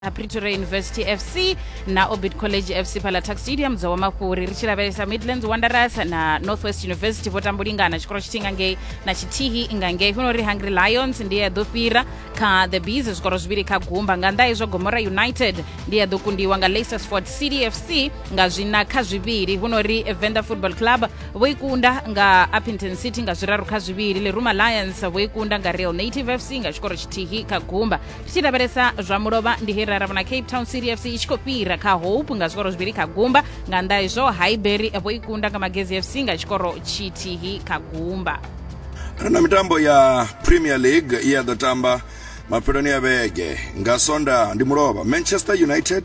ha pretoria university fc na orbit college fc phala tax stadium dzowa mafhuri ri tshi lavhelesa midlands wanderers na northwest university vho tambulingana tshikolo tshithihi nga ngei na tshithihi nga ngei funa uri hungry lions ndi ya ḓo fhira kha the bees zwikoro zwivhili kha gumba nga nnḓa hezwo gomora united ndi ya ḓo kundiwa nga leicestersford city fc nga zwina kha zwivhili huno uri venda football club vho i kunda nga appington city nga zwiraru kha zwivhili leruma lions vho i kunda nga real native fc nga tshikoro tshithihi kha gumba tshi lavhelesa zwa mulovha ndi he ra vhona cape town city fc i tshi khou fhira kha hope nga zwikoro zwivhili kha gumba nga nnḓa izwo highbury vho i kunda nga magezi fc nga tshikoro tshithihi kha gumba ri na mitambo ya premier league i ya ḓo tamba mafheloni ya vhege nga sonda ndi mulovha manchester united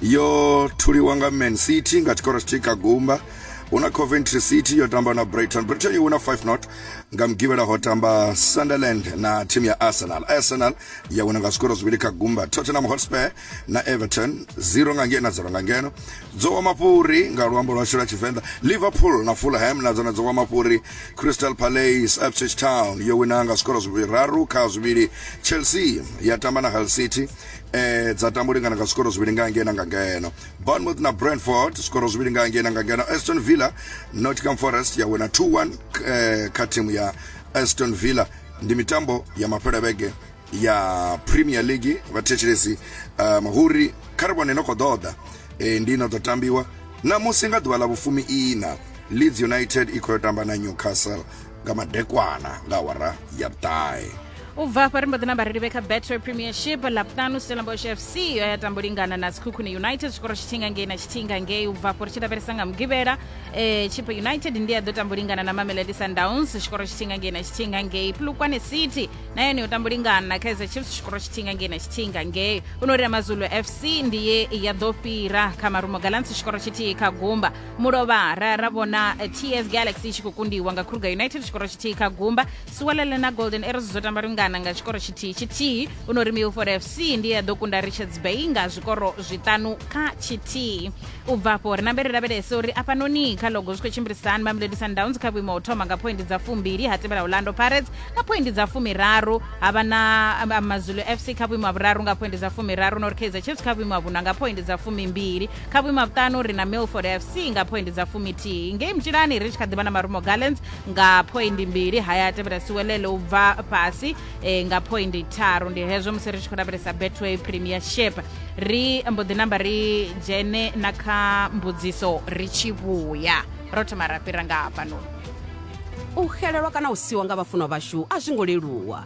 yo thuliwa nga man city nga tshikoro tshithihi kha gumba hu na coventry city yo tamba na brighton brighton i wina 5 not nga mugivhela ho tamba sunderland na thimu ya arsenal arsenal ya wina nga zwikoro zwivhili kha gumba tottenham hotspur na everton 0 nga ngeno na 0 nga ngeno dzo wa mafhuri nga luambo lwashu lwa tshivenḓa liverpool na fulham na dzone dzo wa mafhuri crystal palace ipswich town yo wina nga zwikoro zwiraru kha zwivhili chelsea ya tamba na hull city eh, dza tamba u lingana nga zwikoro zwivhili nga ngeno nga ngeno bournemouth na brentford zvikoro zviviri nga ngena nga ngena aston villa nottingham forest yawina 2-1 eh, kha thimu ya aston villa ndi mitambo ya mafhelo a vhege ya premier league vhathetshelesi um mahuri kha ri vhone no khou ḓoḓa e, ndi no ḓo tambiwa namusi nga ḓuvha ḽa vhufumi ina leeds united i khou yo tamba na newcastle nga madekwana nga awara ya vhuṱahe u bva afha ri mbo ḓi na vhareili vhe kha betway premiership laptano stellenbosch fc yo ya tambo lingana na sikhukhune united tshikoro tshithinga ngei na tshithinga ngei u bva afho ri tshi lavhelesa nga mugivhela um chipo united ndi ya ḓo tambo lingana na mamelodi sundowns tshikoro tshithinga ngei na tshithinga ngei plukwane city na yone yo tambo lingana na kaizer chiefs tshikoro tshithinga ngei na tshithinga ngei u no ri amazulu fc ndi ye ya ḓo fhira kha marumo galants tshikoro tshithihi kha gumba mulovha ra ra vhona eh, ts galaxy i tshi khou kundiwa nga kruger united tshikoro tshithihi kha gumba suwalele na golden arrows dzo tamba lungana nga tshikoro tshithihi tshithihi u no ri milford fc ndi ya ḓo kunda richards bay nga zwikoro zwiṱanu kha tshithihi u bva afho ri nambe ri lavhelese uri afhanoni kha logo zwi khou tshimbilisa hani mamelodi sundowns kha vhuimo ha u thoma nga phoindi dza fumbili ha tevhela orlando pirates nga phoindi dza fumiraru ha vha na um, um, mazulu fc kha vhuimo ha vhuraru nga phoindi dza fumiraru nori kaizer chiefs kha vhuimo ha vhuṋa nga phoindi dza fumimbili kha vhuima vhuṱanu ri na milford fc nga phoindi dza fumithihi ngei mutshilani ri tshi kha ḓivha na marumo gallants nga phoindi mbili haya a tevhela siwelele u bva fhasi e, nga phoindi tharu ndi hezwo musi ri tshi khou lavhelesa betway premiership ri mbo ḓi namba ri dzhene na kha mbudziso ri tshi vhuya ro thoma ra fhira nga hafhanoni u xelelwa kana u siwa nga vhafunwa vhashu a zwi ngo leluwa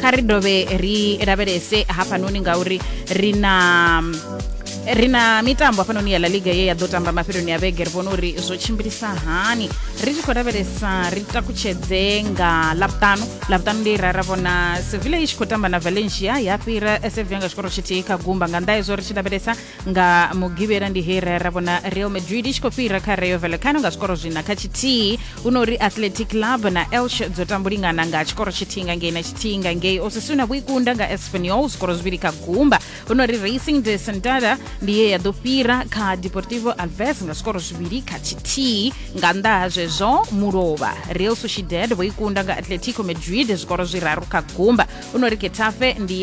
kha ri dovhe ri lavhelese hafhanoni ngauri ri na ri na mitambo hafhanoni ya la liga ye ya ḓo tamba mafheloni ya vhege ri vhona uri zwo tshimbilisa hani ri tshi khou lavhelesa ri takutshedze nga lavhutanu lavhutanu ndi ra ra vhona sevilla i tshi khou tamba na valencia ya fhira sevilla nga tshikoro tshithihi kha gumba nga nnḓa hezwo ri tshi lavhelesa nga mugivhela ndi he ra ra vhona real madrid i tshi khou fhira kha rayo vallecano nga zwikoro zwina kha tshithihi hu no uri athletic club na elch dzo tambulingana nga tshikoro tshithihi nga ngei na tshithihi nga ngei osasuna vho ikunda nga espanyol zwikoro zwivhili kha gumba hu no uri racing de santada ndi ye ya ḓo fhira kha deportivo alves nga zwikoro zwivhili kha tshithihi nga nnḓa ha zwezwo mulovha real sociedad vho ikunda nga atletico madrid zwikoro zwiraru kha gumba hu no uri getafe ndi ye